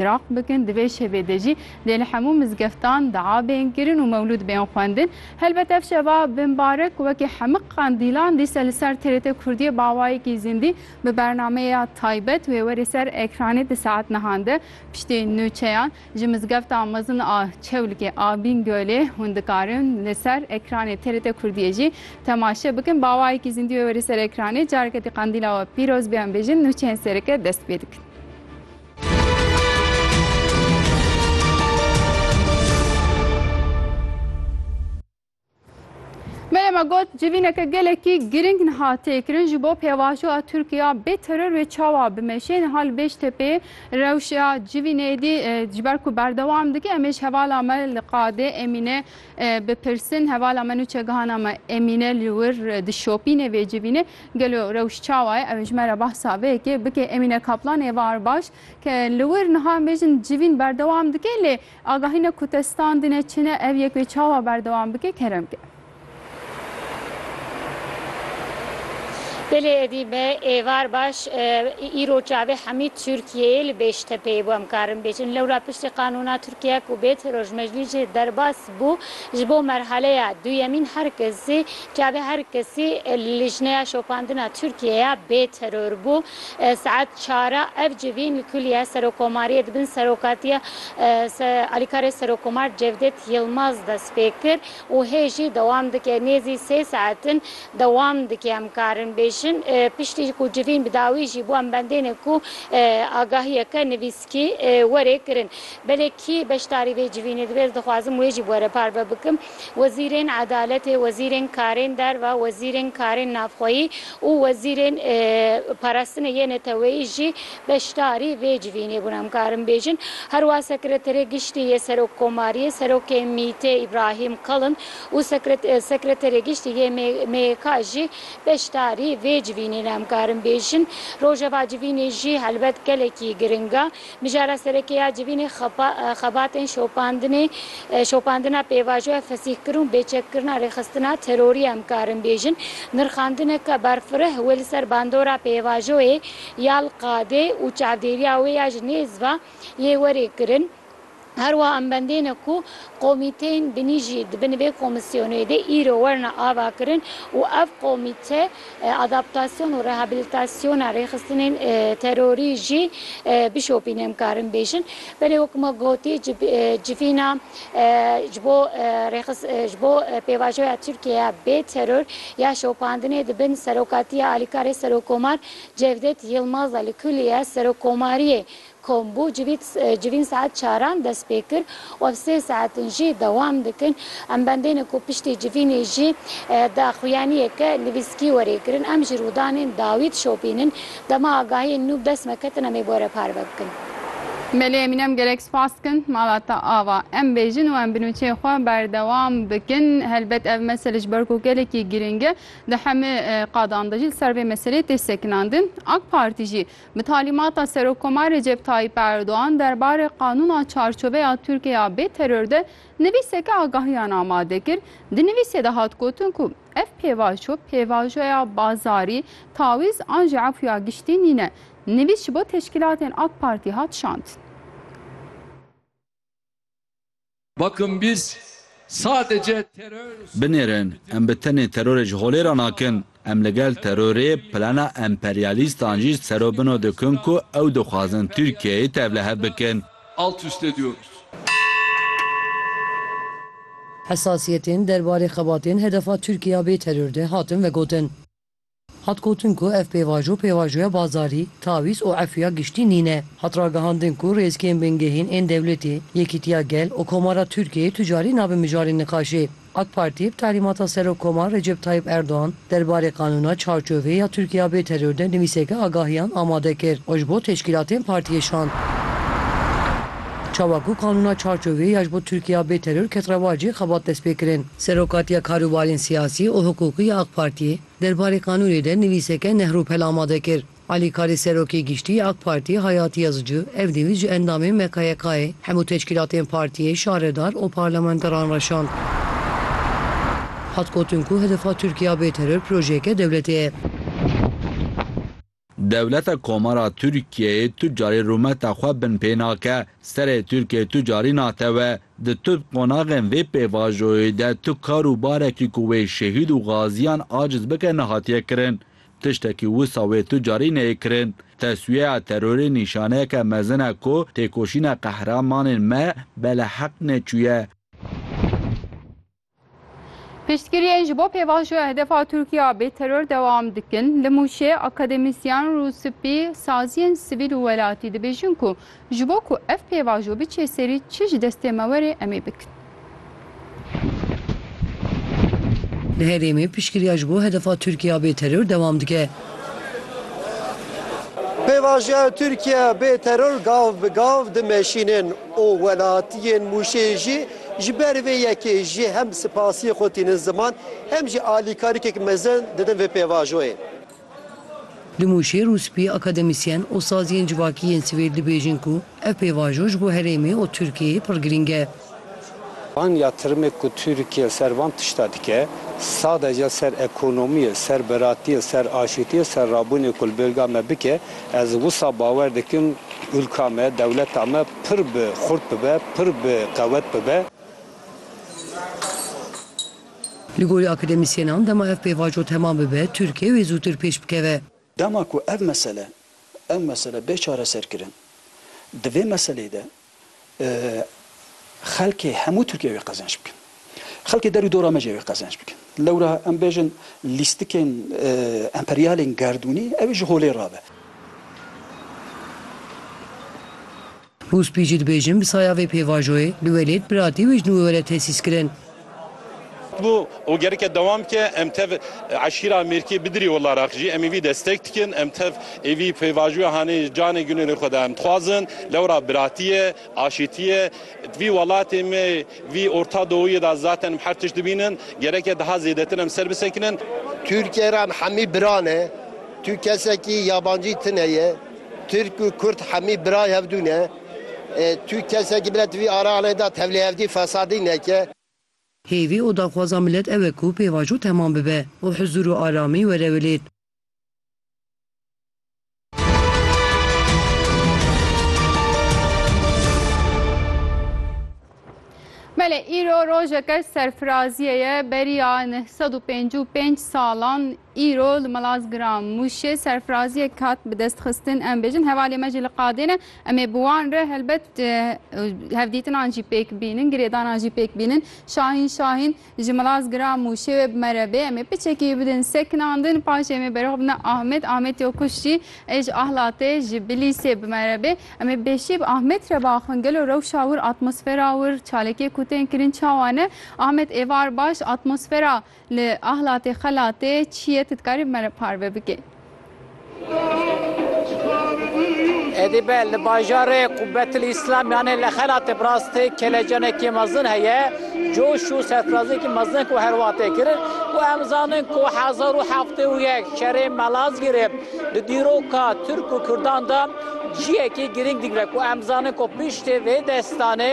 Iraq bikin, di vê şevê de jî dê li hemû mizgeftan dua bên kirin û mewlûd bên xwendin. Helbet ev şeva bimbarek wekî hemû qandîlan dîsa li ser TRT Kurdiyê bawayekî zindî bi bernameya taybet wê were ser ekranê di saet nihan de piştî nûçeyan ji mizgefta mezin a Çewlikê a Bîngölê hûn dikarin li ser ekranê TRT Kurdiyê jî temaşe bikin bawayekî zindî wê were ser ekranê careke dî qandîla we pîroz bê em bêjin nûçeyên sereke dest pê dikin. Meyema got civîneke gelekî girîng niha têkirin ji bo pêvajoya Tirkiya bê teror wê çawa bimeşê niha li Bêjtepê rewşa civînê dî ji ber ku berdewam dike em ê ji hevala me li qadê Emîne bipirsin hevala me nûçegihana me Emîne li wir dişopîne vê civînê Gelo rewş çawa ye? Ew ê ji me re behsa vê yekê bike. Emîne Kaplan ê var baş ke li wir niha em bêjin civîn berdewam dike lê agahîna ku te standine çi ne ev yek wê çawa berdewam bike kerem ke. Belê edî me ê var baş îro çavê hemî Tirkiyeyê li Bêştepeyê bû em karin bêjin. Lewra piştî qanûna Tirkiye ku bêt rojmejlî jê derbas bû ji bo merhaleya duyemîn her kesî Çavê her kesî lijneya şopandina Tirkiyeyê ya bê teror bû. Saet çar a ev civîn li Kulîya Serokomariyê di bin serokatiya alîkarê Serokomar Cevdet Yilmaz dest pê kir û hê jî dewam dike. Nêzî sê saet in dewam dike em karin bêjin. Piştî ku civîn bi dawî jî bû em bendêne ku agahiyeke nivîs. Kî were kirin. Belê kî beşdarî vê civînê dibe ez dixwazim wê jî were parve bikim. Wezîrên Edaletê, Wezîrên Karên Derve, Wezîrên Karên Navxweyî û Wezîrên Parastinê yê Neteweyî jî beşdarî vê civînê bûn em karin bêjin. Herwa Sekreterê Giştî yê Serokkomariyê, Serokê MቘT'ê Îbrahîm Kalin û Sekreterê Giştî yê MYK'ê jî Beşdarî vê civînê ne em karin bêjin. Rojeva civînê jî helbet gelekî giring e. Mijara sereke ya civînê xebatên şopandinê, şopandina pêvajoya fesîhkirin û bêçekkirina rêxistina terorî em karin bêjin. Nirxandineke berfireh wê li ser bandora pêvajoyê ya li qadê û çavdêriya wê ya ji nêz ve lê werê kirin. Her wiha em bendêne ku komîteyên binî jî di bin vê komîsyonê de îro werine avakirin û ev komîte adaptasyon û rehabilitasyona rêxistinên terorî jî bişopîne em karin bêjin. Belê wek me gotî civîna ji bo ji bo pêvajoya Tirkiyeya bê teror ya şopandinê di bin serokatiya alîkarê Serokkomar Cevdet Yilmaz de li kulîye Serokkomariyê Kombû civîn saet çaran dest pê kir û ev sê saetin jî dewam dikin. Em bendêne ku piştî civînê jî daxuyaniyeke nivîskî werê kirin. Em ji rûdanên dawî dişopînin. Dema agahiyên nû bi dest me ketin em ê bi we re parve bikin. Belê Emîne em gelek spas dikin. Mala te ava. Em bêjin û em bi nûçeyê xwe berdewam bikin. Helbet ev mesele ji ber ku gelekî girîng e, di hemû qadan de jî li ser vê meseleyê tê sekinandin. Ak Partî jî Bi talîmata Serokkomar Recep Tayyîp Erdogan derbarê Qanûna Çarçoveya Tirkiyeya bê Teror de nivîseke agahiyan amade kir. Di nivîsê de hat gotin ku ev pêvajo pêvajoya bazarî, tawîz an jî efûya giştî nîne. Nivîs ji bo teşkîlatên AK Partî hat şandin. Binêrin, em bi tenê terorê ji holê re nakin. Em li gel terorê, plana emperyalîstan jî ser û bino dikin ku ew dixwazin Tirkiyeyê tevlihev bikin. Hesasiyetên derbarê xebatên hedefa Tirkiye ya bêteror de hatin vegotin. Hat gotin ku ev pêvajo pêvajoya bazarî, tawîz û efûya giştî nîne. Hat ragihandin ku rêzgehên bingehîn ên dewletê, Yekîtiya Gel û Komara Tirkiyeyê tu carî nabin mijarê niqaşê. Ak Partî bi talîmata Serokkomar Recep Tayyîp Erdogan derbarê qanûna çarçovê ya Tirkiya bê teror de nivîseke agahiyan amade kir û ji bo teşkîlatên partiyê şand. Çawa ku qanûna çarçovê ya ji bo Tirkiya bê teror ket rewacê xebat destpêkirin. Serokatiya Karûbarên Siyasî û Hiqûqî ya AK Partiyê derbarê qanûnê de nivîseke nehrûpel amade kir. Alîkarê Serokê Giştî ya AK Partî Hayatî Yazıcı ev nivîs ji endamên MKYK'ê, hemû teşkîlatên partiyê, şaredar û parlamenteran re şand. Hat gotin ku hedefa Tirkiya bê teror projeyeke dewletê ye. Dewleta Komara Tirkiyeyê tu carî rûmeta xwe bin pê nake, serê Tirkiyê tu carî natewe. Di tu qonaxên vê pêvajoyê de tu kar û barekî ku wê şehîd û gaziyan aciz bike nehatiye kirin. Tiştekî wisa wê tu carî neyê kirin. Teswiyeya terorê nîşaneyeke mezin e ku têkoşîna qehremanên me beleheq neçûye. Piştgiriyên ji bo pêvajoya hedefa Tirkiye a bêteror dewam dikin. Li Mûşê akademisyen û spî saziyên sivîl û welatî dibêjin ku ji bo ku ev pêvajo biçe serî çi ji destê me were em ê bikin. Li herêmê piştgiriya ji bo hedefa Tirkiye a bêteror dewam dike. Pêvajoya Tirkiye bêteror gav bi gav dimeşînin û welatiyên Mûşê jî Ji ber vê yekê jî hem spasiyê xwe tînin ziman hem jî alîkarikek mezin didin vê pêvajoyê. Dimûşêr û spî akademisyen û saziyên civakî yên Swêd dibêjin ku ev pêvajo ji bo herêmê û Tirkiyeyê pir girîng e. Van ya tirimek ku Tirkiye ser van tişta dike, sadece ser ekonomiyê, ser biratiyê, ser aşitiyê, ser rabûnê ku li bêrga me bike, Ez wisa bawer dikim ûlka me, dewleta me pir bi xurt bibe, pir bi qewet bibe. Li gorî akademisyenan dema ev pêvajo temam bibe, Tirkiye wê zûtir pêş bikeve. Dema ku ev mesele, ev mesele bê çareserkirin, di vê meseleyê de xelkê hemû Tirkiyê wê qezenç bikin. Xelkê der û dora me jî wê qezenç bikin. Lewra em bêjin lîstikên emperyalên gerdûnî ew ji holê re be. Hûspî jî dibêjin bi saya vê pêvajoyê li welêt biratî wê ji nû were tesîs kirin. Bû û gerike dewam bike. Em tev eşîra Mêrkê bi dirî wila rex jî em êvî destek dikin. Em tev êvî pêvajoya hanê canê gunê li xwe de em dixwazin. Lewra biratiyê, aşîtiyê di vî welatê me vî Orta Dowiyê de zaten em her tişt dibînin. Gereke daha zêdetir em ser bisekinin. Tirkiyê re em hemî bira ne. Tu kesekî yabancî tine ye. Tirk û Kurd hemî birayê hevdû ne. Tu kesekî bile di vî araxlê de tevlî hevdî fesadî neke. Hêvî û daxwaza milet ew e ku pêvajo temam bibe û huzûr û aramî were wilêt. Belê îro rojeke serfiraziyê ye beriya neh sed û pêncî û pênc salan îro li Malazgira Mûşê serfiraziyek hat bi dest xistin em bêjin hevalê me jî li qadê ne em ê bi wan re helbet hevdîtinan jî pêk bînin girêdanan jî pêk bînin Şahîn Şahîn Ji Milaz giram û şêwê bi me re bê. Em ê piçekî bidin sekinan din. Paşê em ê berxwe bidin Ahmet. Ahmet yo kuşt jî ê ji Ahlatê, ji Bilîsê bi me re bê. Em ê bêşî bi Ahmet re biaxivin. Gelo rewşa wir, atmosfera wir, çalakiyê ku tên kirin çawa ne? Ahmet, Êvar baş, atmosfera li Ahlatê, Xelatê çi ye? Tu dikarî bi me re parve bikî? Êdî be li bajarê Qubetil Îslam yanê li xelatê Brastê kelecanekî mezin heye, coş û serfiraziyekî mezin ku her wiha tê kirin û em zanin ku hezar û heftê û yek şerê Malazgirê di dîroka Tirk û Kurdan de cihekî girîng digre ku em zanin ku piştê vê destanê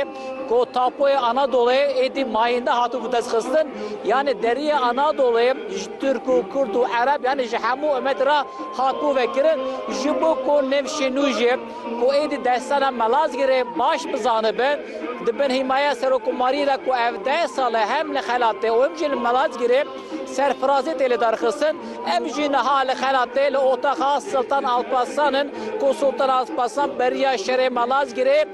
Ku tapoyê Anadolê êdî mayinde hatibû destxistin, yanê deriyê Anadolê ji Tirk û Kurd û Ereb yanê ji hemû umet re hatibû vekirin, ji bo ku nivşên nû jî ku êdî destana Malazgirê baş bizanibin, di bin hîmaya Serokomariyê de ku ev deh sal e hem li xelatê û hem jî li Malazgirê serfirazê tê lêdarxistin, ev jî niha li xelatê li otaxa Siltan Alparslan in ku Sultan Alparslan beriya şerê Malazgirê.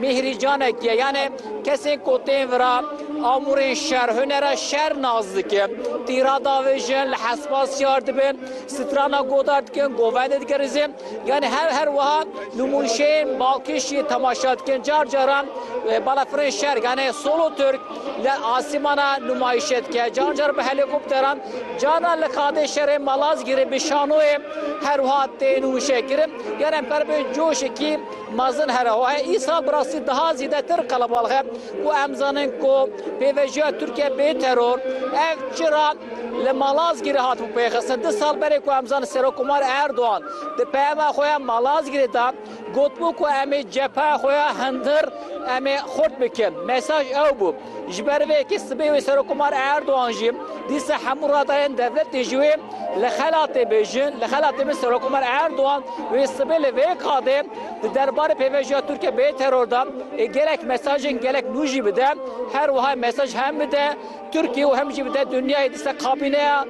Mîhrî canek ye yanê kesên ku tên vira amûrên şer hunera şer nas dike. Tîra davêjin, li hespa siyar dibin, strana godar dikin, govendê digerizin yanê her her wiha nûmûyşeyên balkêşiyê temaşa dikin. Car caran e, balafirên şer yanê solo Türk li asîmana nûmayîşe dike. Car car bi helîkopteran, carna li xadê şerê Malazgîrê bi şanoyê her wiha tê nûmîşe kirin. Yanê em per bi coşekî Mazin Herahohe, Îsal bi rastî daha zêdetir qelebalix e ku em zanin ku pêvejiya Tirkiye bê teror, ev çira li Malazgîrê hatibû pêxistin. Du sal berê ku em zanin Serokkomar Erdogan di peyama xwe ya Malazgîrê de gotibû ku em ê cepheya xwe ya hundir em ê xurt bikin. Mesaj ew bû. Ji ber vê yekê sibê wê Serokomar Erdogan jî dîsa hemû radayên devletê ji wê li xelatê bêjin. Li xelatê min Serokomar Erdogan wê sibê li vê qadê di derbarê pêvajoya Tirkiye bê teror de gelek mesajên gelek nû jî bide. Her wiha mesaj hem bide Tirkiye û hem jî bide dinyayê. Dîsa kabîneya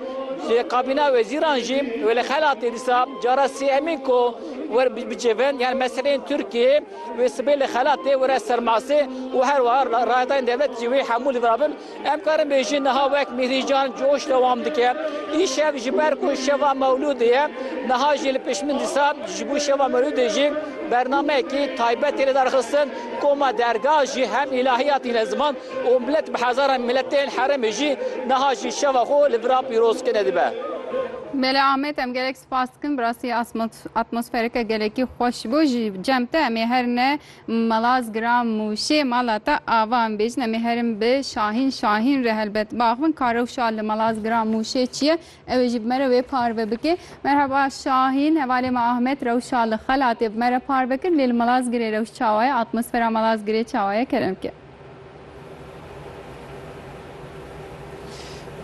kabîneya wezîran jî wê li xelatê dîsa cara sêyemîn ku wer bicivin yan meseleyên Tirkiyeyê. Wê sibê li xelat tê were ser masê û her wiha rayetayên dewlet jî wê hemû li vir bin. Em karin bêjin niha wek Mîhrîcan coş dewam dike. Îşev ji ber ku şeva Mewlûdê ye, niha jî li pişmin dîsa ji bo şeva Mewlûdê jî bernameyekî taybet tê lidarxistin. Koma derga jî hem îlahiya tîne ziman û milet bi hezaran miletên herêmê jî niha jî şeva xwe li vira pîrozkirine dibe. Mele Amed, Em gelek Spas dikim bi rastî atmosfereke gelekî xweş bû ji cem te em ê her ne Malaz Gira Mûşê mala te ava em bêjin em ê herin bi Şahîn Şahîn re helbet biaxivin ka rewşa li Malaz Gira Mûşê çi ye ew ê jî bi me re wê parve bike. Merhaba Şahîn hevalê me Ahmet rewşa li Xelatê bi me re parve kir lê li Malaz Girê rewş çawa ye atmosfera Malaz Girê çawa ye kerem ke.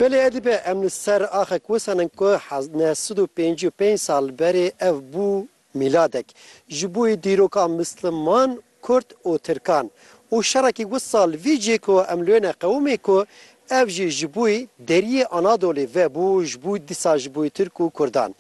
Belê edî be em li ser axek wisanin ku neh sed û pêncî û pênc sal berê ev bû mîladek ji bo yê dîroka misliman, kurd û tirkan û şerekî wisa li vî cihê ku em li wê ne qewimê ku Ev jî ji bûyî deriyê Anadolê ve bû ji bû dîsa ji bûyî Tirk û Kurdan.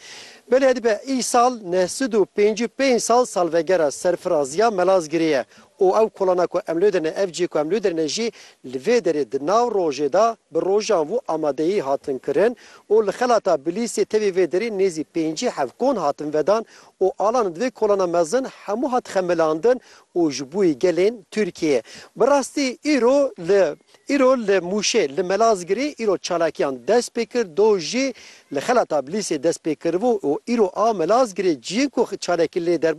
Belê dibe îsal neh sed û pêncî û pênc sal salvegera serfiraziya Melazgirê ye û ew kolana ku em li dir ne, ev cihê ku em li dir ne jî li vê derê di nav rojê de bi rojanvû amadeyî hatin kirin û li xelata Bilîsê tevî vê derê nêzî pêncî heft kon hatin vedan û alan divê kolana mezin hemû hat xemilandin û ji bûyî gelên Tirkiyê bi rastî îro li Îro li Mûşê li Melazgirê îro çalakiyan dest pê kir, do jî li Xelata Bilîsê dest pê kiribû û îro a Melazgirê ciyên ku çalakî lê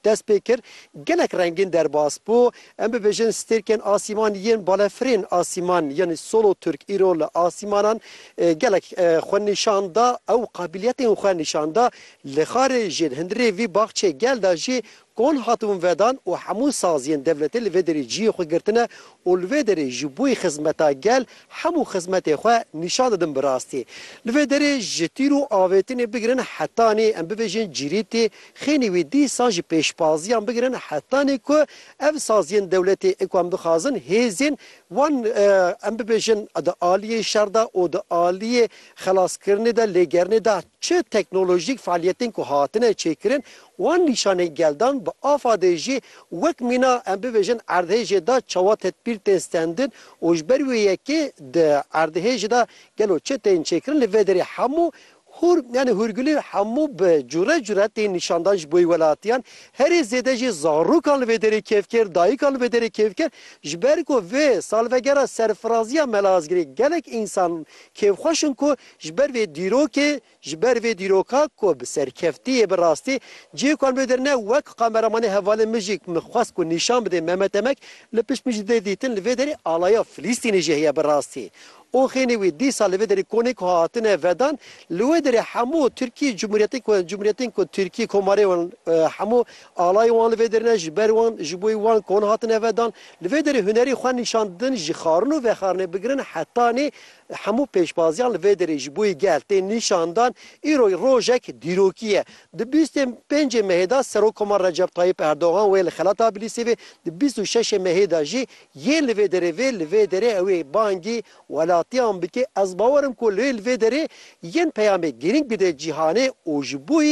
dest pê kir gelek rengîn derbas bû. Em bibêjin stêrkên asîman yên balefirên asîman yanî Solo Turk îro li asîmanan gelek xwe nîşan da ew qabiliyetên xwe nîşan da li Xarê jê li hundirê vî baxçeyê gel da jî Kol hatibûn vedan û hemû saziyên devletê li vê derê ciyê xwe girtine û li vê derê ji bo xizmeta gel hemû xizmetê xwe nîşan didin bi rastî. Li vê derê ji tîr û avêtinê bigirin hetanî em bibêjin cîrîtî, xênî wî dîsan jî pêşbaziyan bigirin hetanî ku ev saziyên dewletê ê ku em dixwazin hêzên wan em bibêjin di aliyê şer de û di aliyê xelaskirinê de lêgerinê de çi teknolojîk fealiyetên ku hatine çêkirin Wan nîşanî geldan bi afadê jî wek mîna em bibêjin erdhêjê da çawa tedbîr tên stendin û ji ber wê yekê di erdhêjê da gelo çi tên çêkirin li vê derê hemû hûr yanî hûrgulî hemû bi cure cure tên nîşandan ji bo welatiyan herî zêde jî zarûkan li vê derê kêfkêr dayikan li vê derê kêfkêr ji ber ku vê salvegera serfiraziya Mela Asgirê gelek însan kêfxweş in ku ji ber vê dîrokê Ji ber vê dîroka ku bi serkeftî yê bi rastî cihê ku em li wir ne wek kameramanê hevalên min jî min xwest ku nîşan bidê me me demek li pişt min jî dê dîtin li vê derê alaya Filîstînê jî heye bi rastî oxênê wî dîsa li vê derê konê ku hatine vedan li wê derê hemû Tirkî cumhuriyetên ku cumhuriyetên ku Tirkî komarê wan hemû alayên wan li vê derê ne ji ber wan ji bo wan kon hatine vedan li vê derê hunerê xwe nîşan didin jixarin û vexarinê bigirin heta nê Hemû pêşbaziyan li vê derê ji bo gel tên nîşandan. Îro rojek dîrokî ye. Di bîst ên pêncê mehê de Serokkomar Recep Tayyîp Erdogan wê li xelata Bilîsê vê, di bîst û şeş ê mehê de jî yên li vê derê vê. Li vê derê ew ê bangî welatiyan bike. Ez bawer im ku li vê derê yên peyamê girîng bide cîhanê û ji bo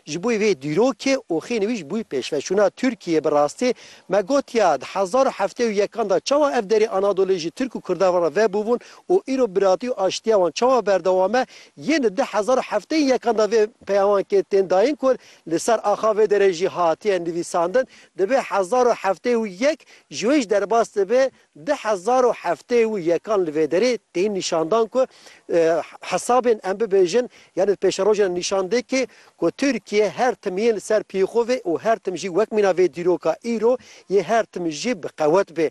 Ji bo vê dîrokê oxê nivîs bû pêşveçûna Tirkiyê bi rastî me gotiya di hezar û heftê û yekan de çawa ev derê Anadolê ji Tirk û Kurdan re vebûbûn û îro biratî û aştiya wan çawa berdewam e yên di du hezar û heftê ên yekan de vê peyamakê tên dayîn ku li ser axa vê derê jî hatiye nivîsandin dibe hezar û heftê û yek ji wê jî derbas dibe Du hezar û heftê û yekan li vê derê tên nîşandan ku hesabên em bibêjin yanî di pêşerojê de nîşan dê kê ku Tirkiye her tim yên li ser piyê xwe vê û her tim jî wek mîna vê dîroka îro yê her tim jî bi qewet bê.